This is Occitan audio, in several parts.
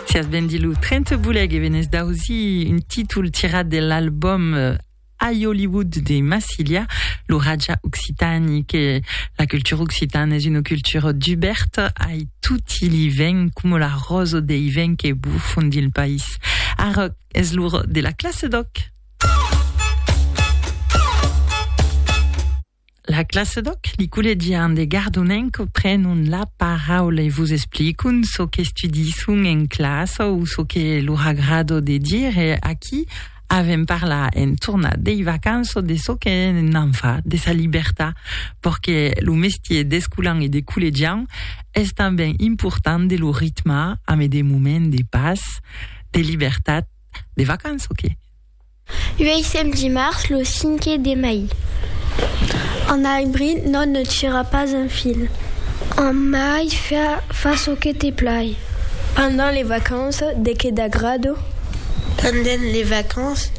Sias ben dit lo 30 boleg e venés d'ausir un títol tirat de l'album I Hollywood de Massilia, lo Raja Occitani, que la cultura occitana es una cultura duberta ai tutti li vents, coma la rosa dei vents que bufan dil país. Ara es l'ora de la classe d'òc! La classe d'òc, li collegian de Gardonenc prenon la paraula e vos explicon çò qu'estudisson en classa o çò que lor agrado de dire. Aquí avèm parlar en tornar dei vacanças de çò que n'an fa, de sa libertat, perque lo mestier d'escolan e de collegian es tanben important de lo ritmar amé de moments de pas, de libertat, de vacanças que. Uèissèm dimars lo cinque de mai. En abril non ne tira pas un fil. En mai fa çò que te plai. Pendent les vacances de que t'agrado? Pendent les vacances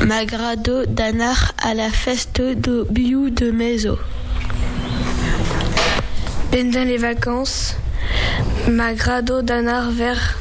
m'agrado d'anar a la fèsta do biu de meso. Pendent les vacances m'agrado d'anar vers.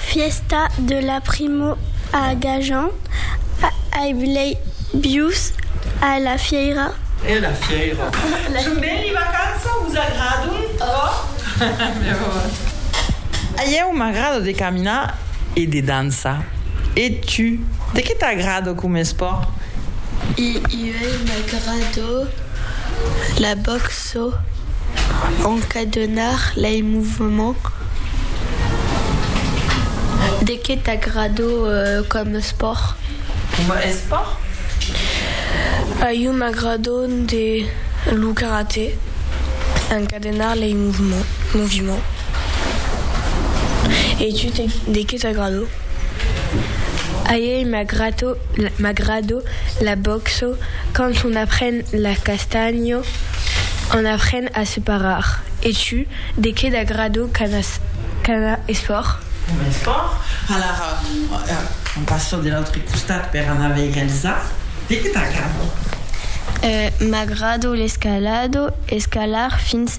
Fièsta de la primo a Gajan, ai blei bius a la fièira. E a la fièira. Son ben li vacança? Vos agradon ò? A ieu m'agrada de caminar e de dançar. E tu, de qué t'agrada com espòrt? E ieu m'agrada la box. Çò encadenar lei movements de que t'agrado com espòrt? Coma espòrt? A iu m'agrado de lo karate, encadenar lei movements. E tu de que t'agrado? Aèi m'agrado la bòxo quand on apren la castanho on apren a se parar e tu de qué t'agrado cada espòrt? Cada espòrt? Alara on passo de l'autre costat per anar veire Elsa de qué t'agrado? M'agrado l'escalado, escalar fins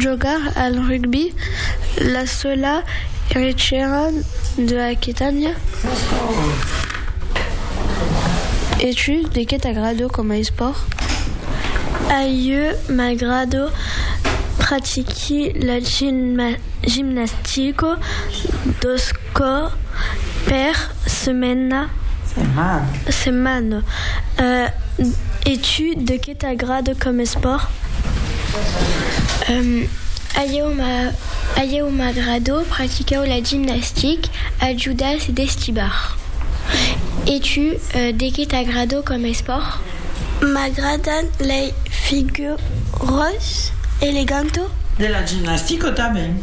Jogar al rugbi, la sola rechaira de Aquitània. E tu, de qué t'agrado coma espòrt? A ieu m'agrado pratiqui la gimnastico, dos. Cò per semena? Setmana. E tu, de qué t'agrada com espòrt? A ieu m'agrada practicau la gimnastic, ajudas e destibar. E tu, de qué t'agrada com espòrt? M'agradan lei figuras elegantas. De la gimnastica tanben.